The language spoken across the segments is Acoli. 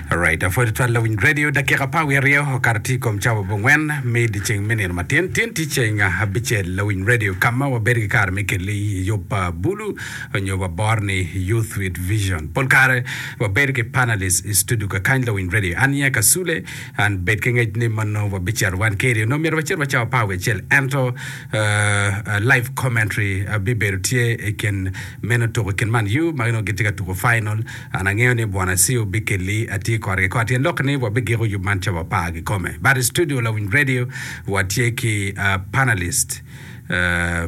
Alright, apwod twal lawiny radio dakika pa wiye aryo okato tye i kom cawa bongwen me dyeceng me nino matin tin tye ceng abicel lawiny radio ka ma wabedo ki kare me kelli yub pa bulu onyo wabor ni youth with vision pol kare wabedo ki panelist i studio kakany lawiny radio an ye kasule an bed ki ngec ni mono wabicito wan keri onongo myero wacit wa cawa pa wiye acel ento uh, uh, live commentary abibedo tye i kin Meno tuko i kin man U ma nongo gitye ka tuko final. An angeyo ni Bwana Siu bikelli atir kore ki kore tyen lok ni wabigiko yub man ca wapar kikome. But i studio lawiny radio wa tye ki panelist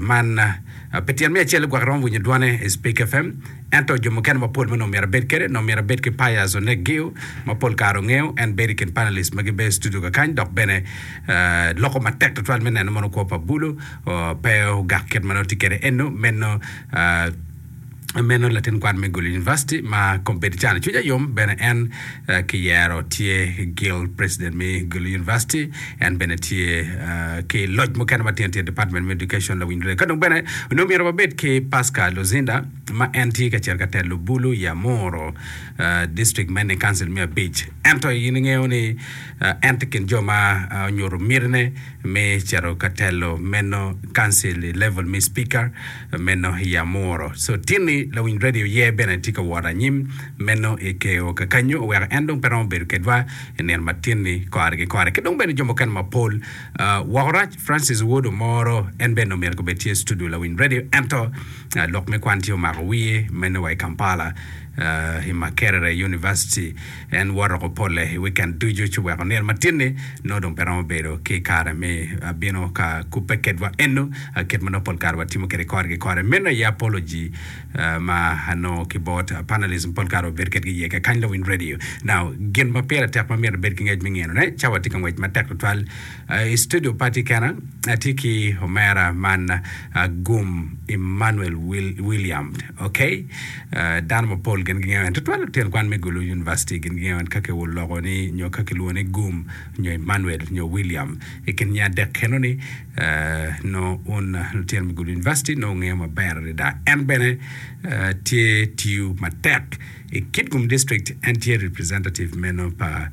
man pi tyen me acel gwok iromo winyo dwane i Speak FM ento jo mukene mapol ma nongo myero abed kede nongo myero abed ki Pius Onek Giu ma pol kare ongeyo en bedo i kin panelist ma gibedo i studio kakany dok bene loko matek tutwal me neno mono kwo pa bulu pe ogak kit ma nongo tye kwede eno. Meno meno latin kwan me Gulu University ma kombeddi cani cwinya yom bene en kiyero tye Guild President me Gulu University en bene tye ki loc mukene ma tino tino Department me Education lawiny lule ka dong bene onongo myero wabed ki Pascal Luzinda ma en tye ka cito ka telo Bulu Yamoro District me Ni Council me abic ento in ingeyo ni en tye kin jo ma onyuto mitine me cito ka telo meno kancil i level me Speaker meno i Amuro. So tini lawiny radio ye bene tye ka wot anyim meno i Keo kakanyu oweko en dong pe romo bedo kedwa i nino ma tini kore ki kore. Ki dong bene jo mukene mapol woko rac Francis Wood Omoro en bene omyero kobed tye i studio lawiny radio ento lok me kwan tye omako wiye meno wa i Kampala i Makerere University. En woto ko polle i wikend ducu ci weko nino matin-ni nongo dong pe romo bedo ki kare me bino ka kubbe kedwa eno kit ma nongo pol kare watimo kwede kore ki kore. Meno aye apology ma anongo ki bot panelists pol kare wabedo kwedgi iye kekany Lowiny Radio. Now, gin ma pire tek ma myero ibed ki ngec me nginone, ca watye ka ngwec matek tutwal i studio pa atye kena, atye ki omera man Agum Emmanuel William. Ok, dano mapol gin gingeyo en, tutwal lutyen kwan me Gulu University gin gingeyo en ka kiwul loko ni nyo ka kilwongo ni Gum nyo Emmanuel nyo William. I kin nya adek kenoni, nongo un lutyen me Gulu University nongo wungeyo maber adada. En bene tye tiyo matek i Kitgum District, en tye representative meno pa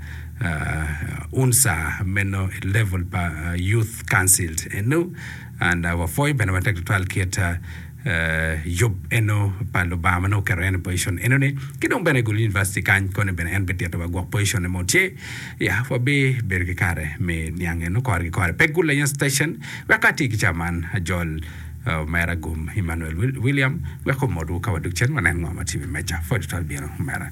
UNSA meno i level pa Youth Council eno, and wapwoyo bene matek tutwal kit yub eno pa Lubanga ma nongo oketo en i pozicon enoni, ki dong bene i Gulu University kany koni bene en bitito wa gwok poziconne ma otye. Ya, wabibedo ki kare me niang eno kore ki kore. Pe gul lanyut station, wek ka atye ki ca man, ajol uh, omera Gum Emmanuel Wil- William wek omotwu ka wadok cen wanen ngo ma tye i wi meja. Pwod tutwal bino, omera.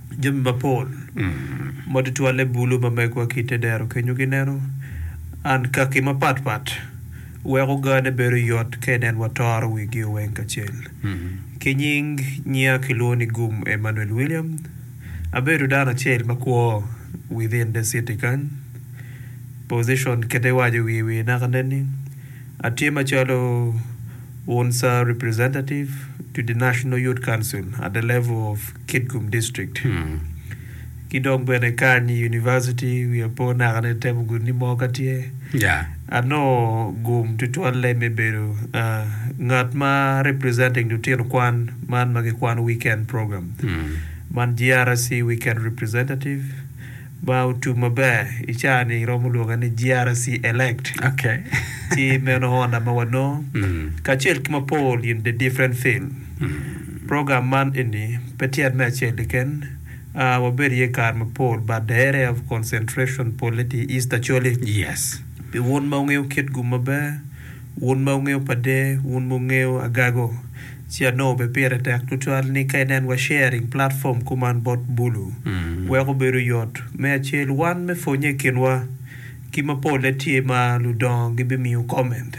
Jami mapol ma tutwalle bulu mamegwa ki i te dero kenyo gineno ankaki mapat pat weko gane bedo yot ka inen watoro wigio weng kacel. Ki nying nya kilwongo ni Gum Emmanuel William. Abedo dano acel ma kwo within the city kany. Position kit iwaco wiye wiye naka nen ni atye macalo Unsa Representative to the National Youth Council at the level of Kitgum District. Ki dong bene kany i University wiya pe onaka ni temo gudo ni mo ka tye. Anongo gum tutwalle me bedo ngat ma representing lutino kwan man ma gikwano weekend program man GRSC Weekend Representative. Ma otum maber i caa ni romo lwonge ni GRC elect ci meno honda ma wanongo kacel ki mapol in the different field. Program man eni pe tyet me acel keken, wabedo iye kare mapol but the area of concentration polle tye i East Acholi. Pi wun ma wungeyo Kitgum maber, wun ma wungeyo Padee, wun ma wungeyo Agago. Ci anongo bene pire tek tutwal ni ka inen wa sharing platform kuman bot Bulu weko bedo yot me acel wan me pwonye i kinwa ki ma polle tye ma ludongo gi bi miyo comment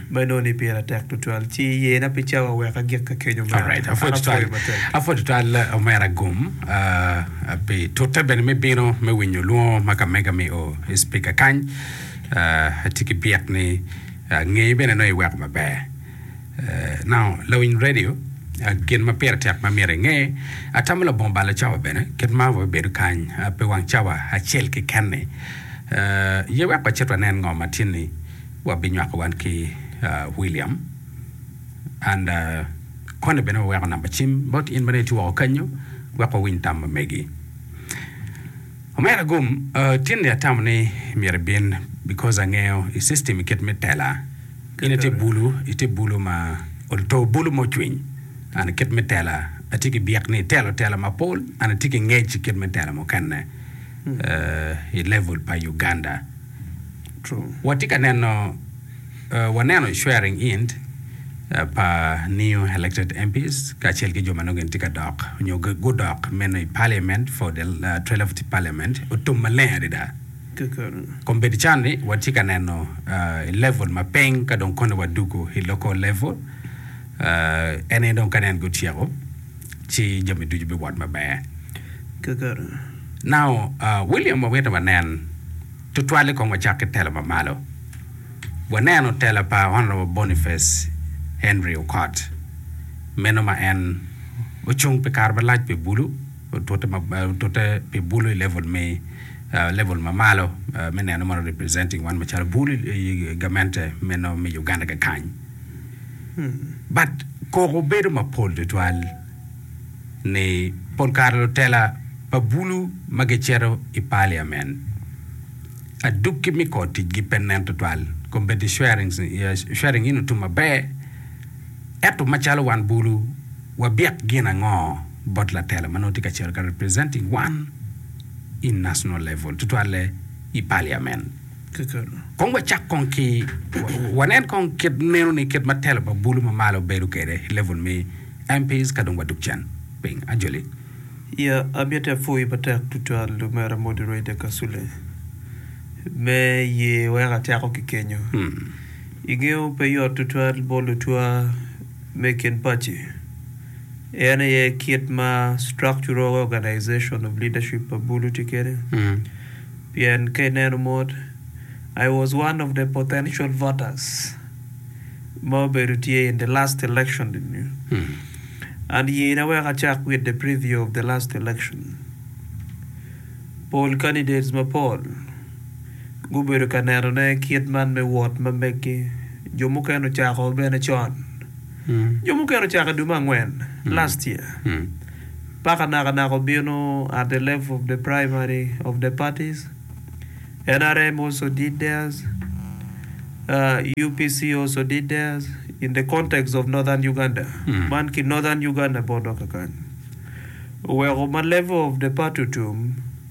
ma inongo ni pire tek tutwal ci yena pi cawa wek agikke kenyo omera an Alright, apwoyo apwoyo tutwal. matek. Apwoyo tutwal eh, omera gum ah, ah, pi tute bene me bino me winyo lwongo ma ka mega mi o i speaker kany. Ah, atye ki byek ni ah, ngeye bene nongo iweko maber. Now, lawiny redio, gin ma pire tek ma myero inge, atamo labongo balo cawa bene, kit ma wabedo kany pi wang cawa acel keken-ni. Ye wek wacit wanen ngo ma tyen-ni wabinywako wan ki William, and koni bene waweko namba cim bot in ma dong itye woko kanyo wek wawiny tam ma megi. Omera gum, tyen-ni atamo ni myero ibin because angeyo i system kit me tela. In ite bulu, ite bulu ma oto, bulu ma ocwiny. An, kit me tela, atye ki byek ni itelo tela mapol. An atye ki ngec i kit me tela mukene i level pa Uganda. Watye ka neno, waneno swearing in pa new elected MPs kacel ki jo ma nongo gin tye ka dok nyo gudok meno i Parliament for the 12th Parliament otum maleng adada. keken. Kong bed can ni watye ka neno i level ma piny ka dong kone wadwogo i local level, en aye dong ka nen gutyeko ci jami ducu biwot maber keken. Now William wamito wanen tutwali kong wacak ki tela ma malo, waneno tela pa Honourable Boniface Henry Okot meno ma en ocung pi kare malac pi bulu, otute pi bulu i level me level ma malo me neno mono representing wan macalo bulu i gamente meno me Uganda kakany but koko bedo mapol tutwal ni pol kare lutela pa bulu ma gicito i parliament adukki me kor ticgi pe nen tutwal competi sharing in otum maber Ento macalo wan bulu, wabyek gin ango bot latela ma nongo tye ka cito ka representing wan i national level, tutwalle i parliament? Kong wacak kong ki, wanen kong kit meno ni kit ma telo pa bulu ma malo bedo kwede i level me MPs ka dong wadok cen piny. Ajoli. Ya, amiti apwoyi matek tutwal Lumera Moderator Kasule me ye weko ateko ki kenyo. I gengo pe yot tutwal bot lutwa me i kin paci, en aye kit ma structural organization of leadership pa bulu tye kede, pien ka ineno mot I was one of the potential voters ma obedo tye in the last election eni, and yena wek acak with the preview of the last election, pol candidates mapol. gubedo ka nenone kit man me wot ma meggi. Jo mukene ocako bene con, jo mukene ocako i dwe me angwen, last year, paka naka naka obino at the level of the primary of the parties. NRM also did theirs, UPC also did theirs in the context of Northern Uganda. Man ki Northern Uganda bot dok kakany. Oweko ma level of the party otum,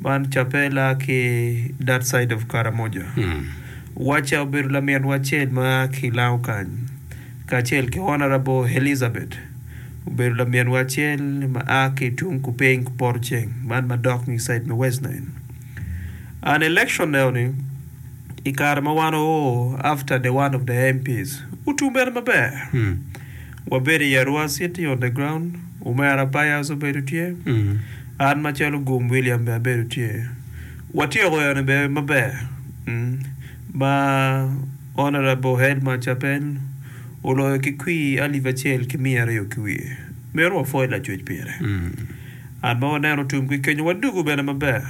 Man Capella ki that side of Karamoja. Wacha obedo laminwa acel ma a ki Lango kany, kacel ki Honourable Elizabeth obedo laminwa acel ma a ki tung kupiny kupoto ceng, man madok ni side me West Nile. An election eno ni i kare ma wan oo after the one of the MPs, utum bene maber. Wabedo i Arua City on the ground. Omera Byers obedo tye. An macalo Gum William bene abedo tye. Watyeko eno bene maber ma Honourable Head Mac Capel oloyo ki kwir alip acel ki miya aryo ki wiye. Myero wapwoy Lacwec pire. An ma waneno tum ki kenyo wadugu bene maber.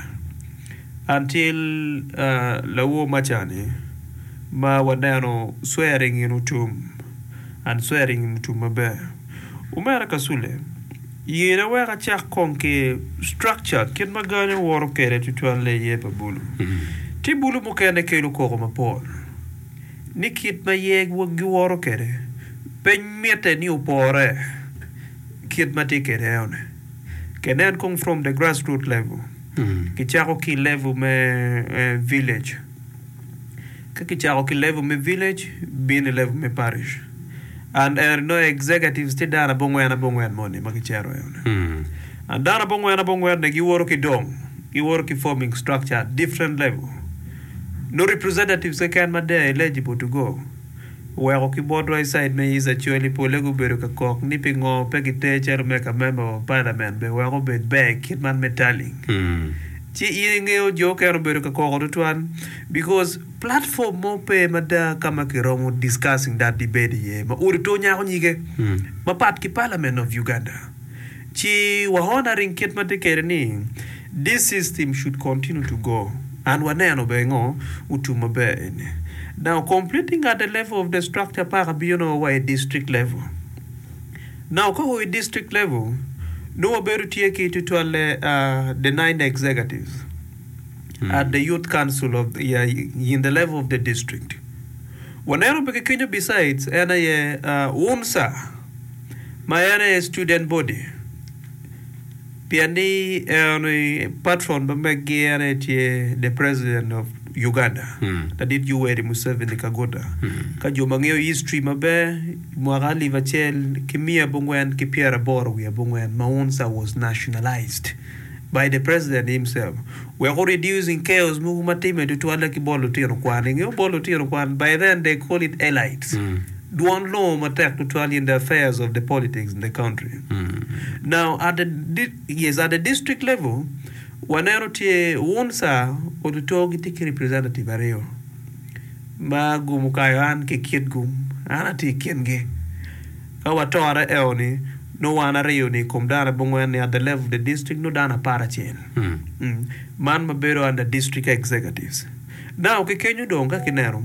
An tye lawo maca-ni ma waneno swearing in otum. An swearing in otum maber. Omera Kasule, yena wek acak kong ki structure kit ma gangi owoto kwede tutwalle iye pa bulu. Tye bulu mukene kelo koko mapol ni kit ma yeg giwoto kwede pe mitte ni opore kit ma tye kwede eone. Kenen kong from the grassroot level, kicako ki level me village. Ka kicako ki level me village, bino i level me parish and ento inongo executives tye dano abongwen abongwen moni ma kicero eno-ni. And dano abongwen abongwen-ni giwoto ki dong, giwoto ki forming structure at different level. Nongo representatives keken ma they are eligible to go. Oweko ki botwa i cid me Easter col i pole gubedo ka kok ni pingo pe giter calo me ka member wa parliament be weko obed ber kit man me tallying. Ci in ingeyo jo okene obedo ka koko tutwal because platform mo pe mada kama ki romo discussing that debate iye ma odi to nyako nyige mapat ki parliament of Uganda. Ci waone aring kit ma tye kede ni This system should continue to go and waneno bene ngo otum maber eni. Now completing at the level of the structure paka biyo nongo wa i district level. Now ka wa i district level nongo wabedo tye ki tutwalle the nine executives at the youth council of in the level of the district. Waneno bene ki kenyo besides en aye UNSA. ma en aye student body pien ni eno ni patron ma meggi en aye tye the president of Uganda ladit Yoweri Museveni Kaguta ka jo ma ngeyo history maber i mwaka alip acel ki miya abongwen ki pyeraboro wiye abongwen ma UNSA was nationalised by the president himself wek o reducing chaos mogo ma timme tutwalle ki bot lutino kwan ingeyo bot lutino kwan by then they call it elites Dwon longo matek tutwal in the affairs of the politics in the country. Now at the di, yes at the district level waneno tye UNSA otuto gitye ki representative aryo ma gum okayo an ki kit gum an atye i kingi. Ka watore eo ni nongo wan aryo ni i kom dano abongwen ni at the level of the district nongo dano apar acel. Mm. Man ma bedo under district executives. Now ki kenyo dong ka kineno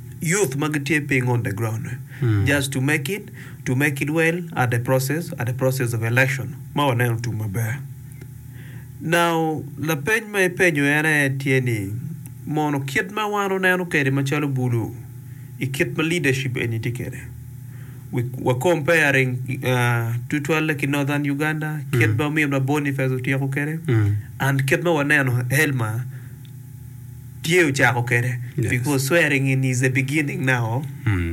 youth ma gitye piny on the ground ni just to make it to make it well at the process at the process of election ma waneno otum maber now lapeny ma ipenyo en aye tye ni mono kit ma wan waneno kwede macalo bulu i kit ma leadership eni tye kwede we wa comparing uh, tutwalle ki northern Uganda kit ma ominwa Boniface otyeko kwede and kit ma waneno Helma Tye ocako kede because swearing in is the beginning now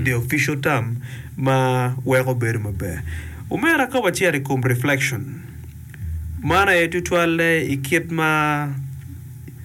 the official term ma weko bedo maber omera ka wacito i kom reflection man aye tutwalle i kit ma